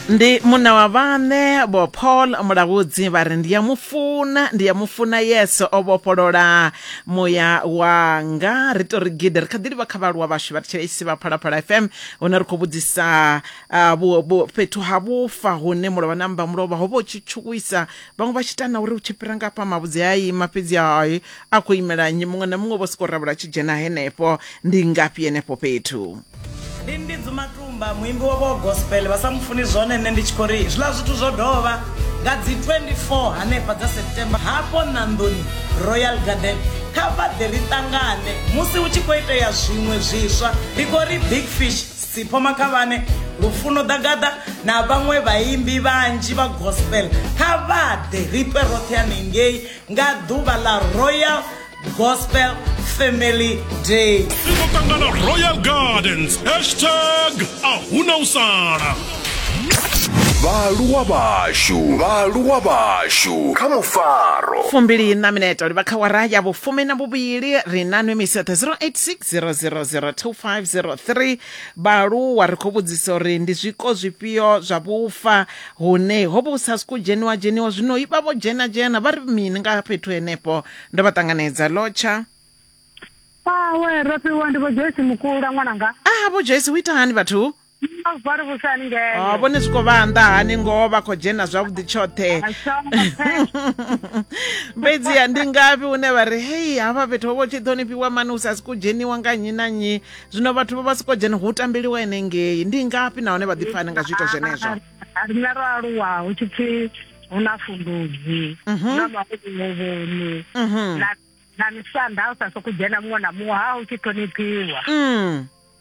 ndi munna wa vhaṋe vho paul mulahudzi vha ri ndi ya mu funa ndi ya mu funa yeso o vhofholola muya wanga ri to ri gidi ri kha ḓi livha kha vhaaluwa vhashu vha thetshelesi vha phalaphala fm hune ri khou vhudzisa ah, vhu- vhu- fhethu ha vhufa hune mulovha na mba mulovha ho vha u tshi tshuwisa vhaṅwe vha tshi ita na uri u tshi fhira nga hafha mavhudzi a ima fhedzi hai a khou imela nnyi muṅwe na muṅwe vho sokou rabula tshi dzhena henefho ndi ngafhi henefho fhethu ndi ndi dzumatumba muimbi wa vho gospel vha sa mufuni zwone nṋe ndi tshi khou ri zwiḽa zwithu zwo dovha nga dzi 24 hanefha dza september hafho nandoni royal garden kha vha ḓe ri ṱangane musi hu tshi khou itea zwiṅwe zwiswa ndi khou ri big fish Sipho Makhavhane, Lufuno Dagada na vhaṅwe vhaimbi vhanzhi vha gospel kha vha ḓe ri ṱwe roṱhe hanengei nga ḓuvha ḽa Royal Gospel Family Day. Ri khou ṱangana Royal Gardens hashtag a huna u sala. vhaaluwa vhashu vhaaluwa vhashu kha mufaro fumbili na minete livha kha wara ya vhufumi na vhuvhili ri na nwe misi yoṱhe 086 60002503 vhaaluwa ri khou vhudzisa uri ndi zwiko zwifhio zwa vhufa hune ho vha hu sa siku dzheniwa dzheniwa zwino i vha vho dzhena dzhena vha ri mini nga fhethu henefho ndo vha ṱanganedza lotsha Awe, ro fhiwa ndi vho Joyce Mukula ṅwananga. a vho joyce hu ita hani vhathu Oh, vhone zwi khou vha nnḓa hani ngoho vha khou dzhena zwavhuḓi tshoṱhe fhedziha ndi ngafhi hune vha ri hei hafha fhethu ho vha tshi ṱhonifhiwa mani u sa siko dzheniwa nga nnyi na nnyi zwino vhathu vha vha siko dzhena hu tambeliwa ene ngei ndi ngafhi nahone vha ḓipfani nga zwiito zwenezwo rine ro aluwa hu tshi pfi hu na fundudzi mhm. na makulovoni mhm. na misanda u sa soko dzhena muṅwe na muṅwe ha u tshi ṱhonifhiwa mm.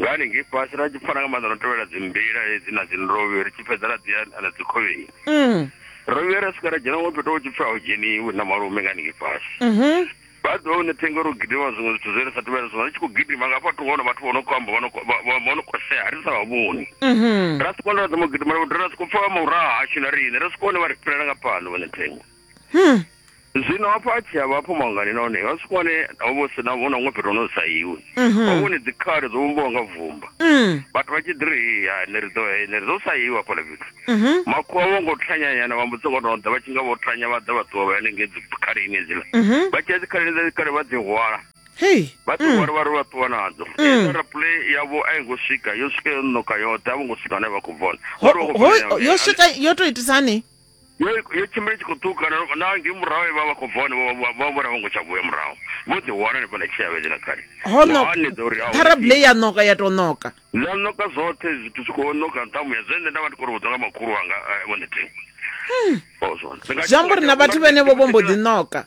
ngani ngei fhasi ra tshi pfana nga maanḓa no tevhela dzimbila hedzi na dzinrovhe ri tshi fhedza ra ḓiya na dzikhovheni mm. ro vhuya ra swika ra dzhena ngo fhethu ho tshi pfi a u dzheniwi na malume ngani ngei fhasi mhm. vha ḓo hone thengo ro gidima zwiṅwe zwithu zwe ri sa tevhela zwino ri tshi khou gidima nga fha thungo hone vhathu vho no khou amba vho no kosea ri sa vha vhoni mhm. ra soko nda ra dzama u gidima ra soko pfa vha mauraha hashu na riṋe ra soko hone vha ri fhilela nga fhano vhone thengo hmm. zwino hafho a tshi ya vhafho mangani nahone ha swika hone ho vha si na vhona ngo fhethu hono sa iwe mhm. ho vhone dzikhare dzo vhumbiwa nga vumba mm. vhathu vha tshi ḓi ri ya ne ri ḓo eh, ne ri ḓo sa iwe hafhaḽa fhethu mhm. makhuwa vho ngo thanyanyana vha mbudzi ngono ḓa vha tshi nga vho thanya vha ḓa vha ṱuwa vha yanenge dzikharini edziḽa mhm. vha tshi ya dzikharini dza dzikare vha dzi hwala vha ṱuwa mm. ri vha ri vha ṱuwa nadzo mm. raple yavho a yi ngo swika yo swika yo noka yoṱhe a vho ngo swika hone vha khou vona yo swika yo to itisani yo yo tshimbila tshi khou ṱuka na- na ngei murahu vha vha khou bva hone vha- vha- vha vhona vho ngo tsha vhuya murahu vho ḓi wana hanefha na tshiavhedzi na khali ho no hanedza uri a hu- parable ya noka ya to noka ḽa noka zwoṱhe zwithu zwi khou noka nṱhamu ya zwe nṋe nda vha ndi khou ri vhudzwa nga makhulu wanga eh, vho ndetingo ozwo zwi amba uri na vhathu vhenevho vho mbo ḓi noka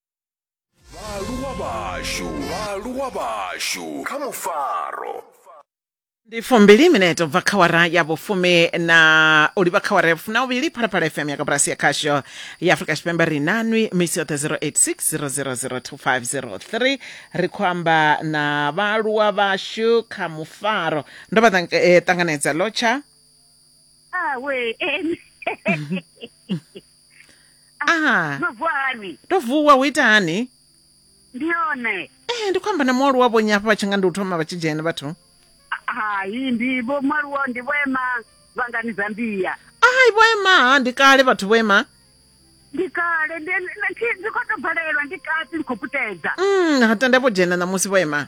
vhaaluwa vhashu vhaaluwa vhashu kha mufaro ndi fumbili minete ubva kha wara ya vhufumi na u livha kha wara ya vhufumi na uvhili phalaphala fm ya kabulasi ya khasho ya afrika tshipembe ri na nwi misi yoṱhe 0860002503 ri khou amba na vhaaluwa vhashu kha mufaro ndo vha tang- eh, ṱanganedza lotsha awe Ah. no vuwa hani to vuwa hu ita hani ndi yone ee ndi khou amba na mualuwa vhonyi hafha vha tshi nga ndi u thoma vha tshi dzhena vhathu hai ndi vho mwaluwo ndi vho ema vhangani zambia ai vho ema ha ndi kale vhathu vho ema ndi kale ndi ndi- ndi khou tou bvalelwa ndi kati ndi khou putedza mm ha tenda vho dzhena ṋamusi vho ema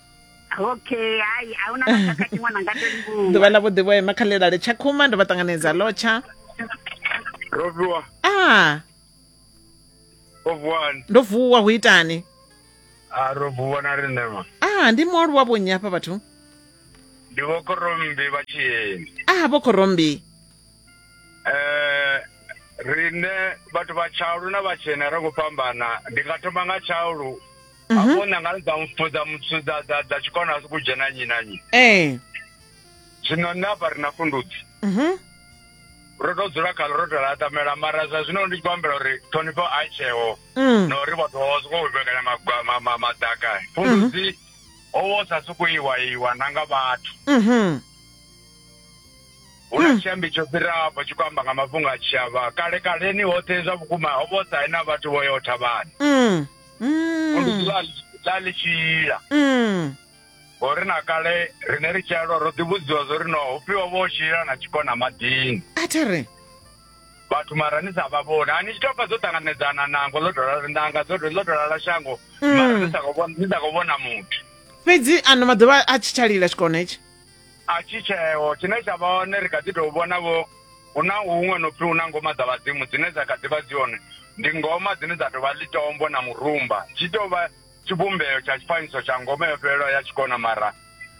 okay hai a huna na tshaka tshiṅwe na nga to livhuwa ḓuvha ḽa vhuḓi vho ema kha ḽilale tsha khuma ndo vha ṱanganedza lotsha Roviwa, a Rovuwani. ndo vuwa hu itani Ah, Rovuwa na riṋe ma. a ndi mualuwa vhonnyi hafha vhathu Ndi vho Korombi vha Tshiyeni. a vho khorombi Eh, riṋe vhathu vha Tshaulu na vhatshena ro ngo fhambana. Ndi nga thoma nga Tshaulu Mhm. hafho nangani dza mpfu dza mutsu dza- dza dza tshikona asi kudzhena nnyi na nnyi ee zwino nṋe hafha ri na fundudzi Mhm. ro to dzula khalo ro to laṱamela mara zwa zwino ndi tshi khou ambela uri ṱhonifho a i tsheho Mm. na uri vhathu vha sokou vhekanya magwa- ma- ma- madaka fundudzi ho vha u sa sokou iwa iwa na nga vhathu Mhm. hu na tshiambi tsho fhiraho afho tshi khou amba nga mafhungo a tshiavha kale kaleni hoṱhe zwa vhukuma ho vha u sa na vhathu vho yo thavhani Mm. musi ḓuvha ḽa ḽi tshi ila Mm. ngori na kale rine ri tshi alwa ro ḓivhudziwa zwo ri no hufhiwa vho tshila na tshikona maḓini a thi ri vhathu mara ni sa vha vhoni a ni tshi tou pfa dzo ṱanganedzana nango ḽo tou lala- nanga dzo ḽo tou lala shango mara ni sa khou vhona- ni sa khou vhona muthu fhedzi ano maḓuvha a tshi tsha lila tshikona hetshi a tshi tsheo tshine tsha vha hone ri kha ḓi tou vhonavho hu na huṅwe no pfi hu na ngoma dza vhadzimu dzine dza kha ḓi vha dzi hone ndi ngoma dzine dza tou vha ḽitombo na murumba tshi tou vha tshivhumbeo tsha tshifanyiso tsha ngoma yo fhelelaho ya tshikona mara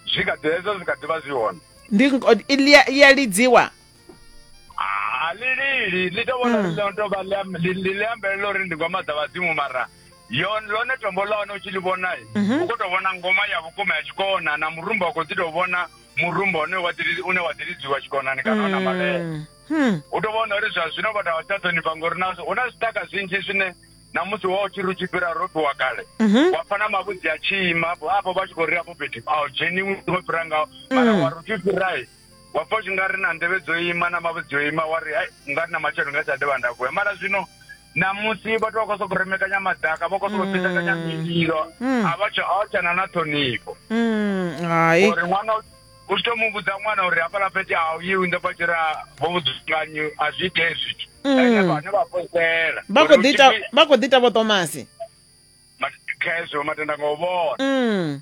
zwi kha ḓi hezwo zwi kha ḓi vha zwi hone ndi ya lidziwa Ah, ḽi lili ḽi to vhona ḽi no to vha ḽi am- ḽi- ḽi ḽi ambelela uri ndi ngoma dza vhadzimu mara yo lone tombo ḽa hone u tshi ḽi vhona u khou tou vhona ngoma ya vhukuma ya tshikona na murumba u khou ḓi tou vhona murumba une wa ḓi ri- une wa ḓi lidziwa tshikonani kana ona malele Mm. Hmm. u tou vhona uri zwa zwino vhathu a vha tsha ṱhonifha ngori na hu na zwiṱaka zwinzhi zwine na musi wa u tshi ri u tshi fhira ro ṱuwa kale Mhm. wa pfa na mavhudzi a tshi ima afho vha tshi khou ri afho fhethu a u dzheniwi ngo fhira ngaho mara wa ri u tshi fhirae wa pfa zwi nga ri na nḓevhe dzo ima na mavhe dzo ima wa ri nga ri na matshelo nga tsha dovha nda vuya mara zwino namusi vhathu vha khou sokou remekanya madaka vha khou sokou mm. fhitakanya mililo mm. a vha tshana na ṱhonifho uri ṅwana u tshi to mu vhudza ṅwana uri hafhaḽa fhethu a u yiwi ndo vha tshi ra vho vhudzunganyi a zwi itee zwithu ene vhane vha posela vha khou ḓi ita vho tomasi khezwo matenda nga u vhona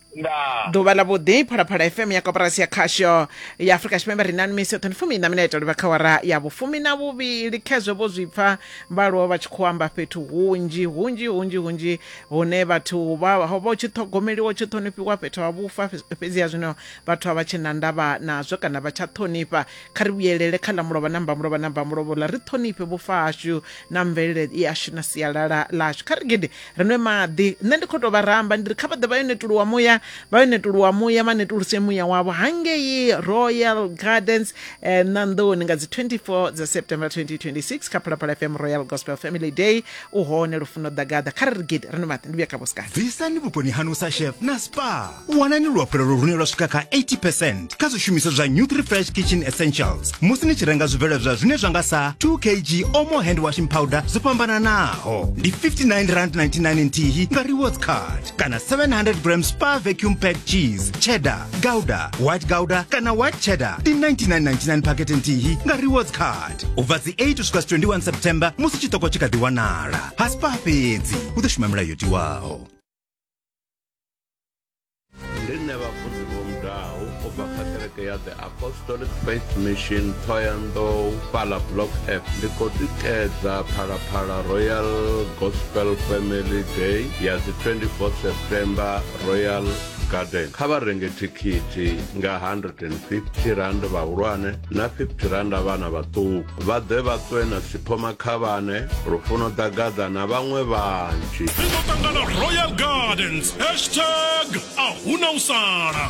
ndaa ḓuvha ḽa vhuḓi phalaphala fm ya koporasi ya khasho ya afurika tshipembe ri na misi yoṱhe ndi fumi na minete livha kha wara ya vhufumi na vhuvhili khezwo vho zwi pfa vhaaluwa vha tshi khou amba fhethu hunzhi hunzhi hunzhi hunzhi hune vhathu vha ho vha u tshi ṱhogomeliwa u tshi ṱhonifhiwa fhethu ha vhufa fhe- fhedziha zwino vhathu a vha tshe na ndavha nazwo kana vha tsha ṱhonifha kha ri vhuyelele kha ḽa mulovha na mbamulovha na mbamulovha ḽa ri ṱhonifhe vhufa hashu na mvelele yashu na sialala ḽashu kha ri gidi ri nwe maḓi nṋe ndi khou tou vha ramba ndi ri kha vha ḓe vha yo netuluwa muya vha yo netuluwa muya vha netuluse muya wavho hangei royal gardens eh, ṋanḓoni nga dzi 24 dza september 2026 kha phalaphala fm royal gospel family day u hone lufuno ḓagaḓa kha ri ri gidi ri nwe maḓi ndi vhuya kha vhosikana bvisani vhukoni hanu sa chef na spa wanani luhafhulelo lune lwa swika kha 80 percent kha zwishumiswa zwa new 3 fresh kitchen essentials musi ni tshi renga zwibveledzwa zwine zwa nga sa 2 kg omo hand washing powder zwo fhambananaho ndi 59 rand 99 nthihi nga rewards card kana 700 gram spa vacuum pack cheese cheddar gouda white gouda kana white cheddar ndi 99.99 pakete nthihi nga rewards card u bva dzi 8 uswika 21 september musi chitoko chikadiwanala ha spa fhedzi u ḓo shuma milayo yo tiwaho ndi nṋe vhafunzi vho mudaho u bva kha kereke ya the apostolic faith mission thoyandou fhala block f ndi khou tikedza phalaphala royal gospel family day ya dzi 24 september royal garden kha vha renge thikhithi nga 150 rand vhahulwane na 50 rand vhana vhaṱuku vha ḓe vha ṱwe na siphoma khavhane lufuno ḓagaḓa na vhaṅwe vhanzhi ri ḓo ṱangana royal gardens hashtag a huna u sala